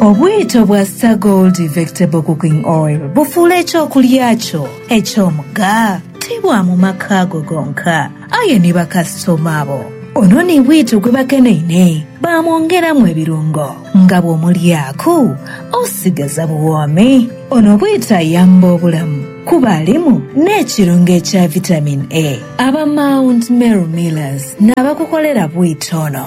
Obwito bwa Star Gold Vectable Cooking Oil bufuula eky'okulya kyo eky'omugha. Ti bwa mu maka go gonka, aye ni bakasitoma bo. Ono ni bwito gwe bakeneine baamwongeramu ebirungo nga bw'omulyaaku osigaza buwoomi. Ono bwito ayamba obulamu kuba alimu n'ekirungo ekya Vitamin A. Aba Mount Meru Millers n'abakukolera bwito ono.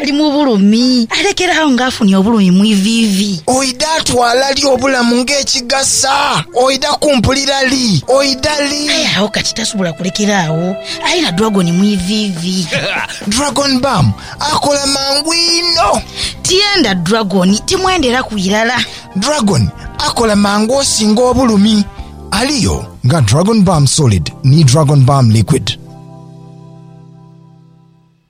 Ali mu bulumi, alekere agho ng'afunye obulumi mu iviivi. Oidha twala li obulamu ng'ekigasa? Oidha kumpulira li? Oidha li? Aye agho kati tasobola kulekera agho, ali na dragon mu iviivi. Dragon Bam akola mangu inho. Tienda dragon, timwenderaku irala. Dragon akola mangu osinga obulumi. Aliyo nga Dragon Bam Solid ni Dragon Bam Liquid.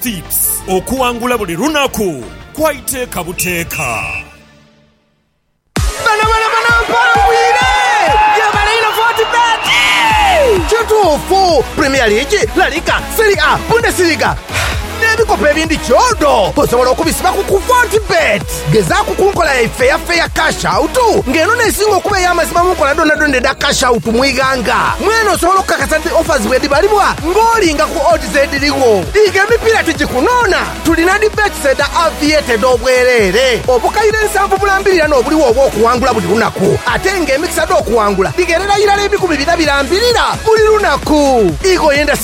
Tips, Okuwangula buli lunaku kwa iteeka buteeka. Bano bano bano Mpawo bwire ye baleino voti beti. Kituufu, Premier League, La Liga, Serie A, Bundesliga, n'ebikopo ebindi kyodo osobola okubisiba ku ku voti beti. Gezaaku ku nkola ya ifeyafeya, cash out, nga eno n'esinga okuba ey'amazima mu nkola dhoonadhoona edha cash out mu ighanga. Mwene osobola okukakasa nti offers bwedhibalibwa ng'olinga ku odds edhirigho. Dhiika emipiira tigikunoona. Tulina dhi bets edha Aviator edh'obwereere, obukaire nsanvu bulambirira n'obuligho obw'okuwangula buli lunaku, ate ng'emikisa dh'okuwangula dhigherera irala ebikumi bina birambirira buli lunaku. Ighoyenda.